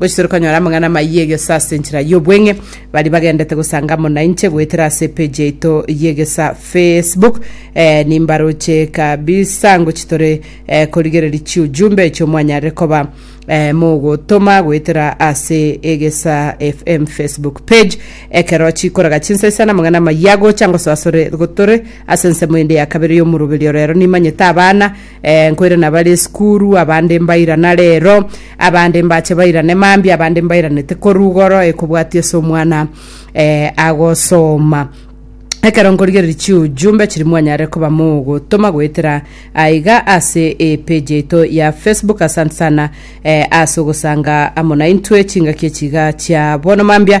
Gochia ere konyora amang'ana amayia egesa ase enchera y'obweng'e, baria bagendete gosanga amo nainche goetera ase epeji yaito y'egesa Facebook. Eh, nimbaroche kabisa ngochia tore eh, korigereria chiujumbe echio mwanyarire koba eh, mogotoma goetera ase egesa FM Facebook page. Ekero chikorega chinsa isa namang'ana amayia gocha ngosoasore gotore ase ensemo ende ya kabere y'omoroberio rero nimanyete abana Eh, nkoirana abare esukuru, abande mbairana rero, abande mbache bairane mambia, abande mbairanete korwa igoro, ekobwatia ase omwana eh, agosoma ekero nkorigereria chiujumbe chiri mwanyare koba mogotoma goetera aiga ase epeji yaito ya facebook asante sana eh, ase ogosanga amo naintwe chingaki echiga chia bono mambia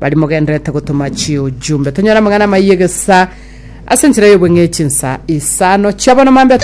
Baria mogenderete gotoma chiujumbe, tonyore amang'ana amayia egesa ase enchera y'obong'e chinsa isano chiabono mambia.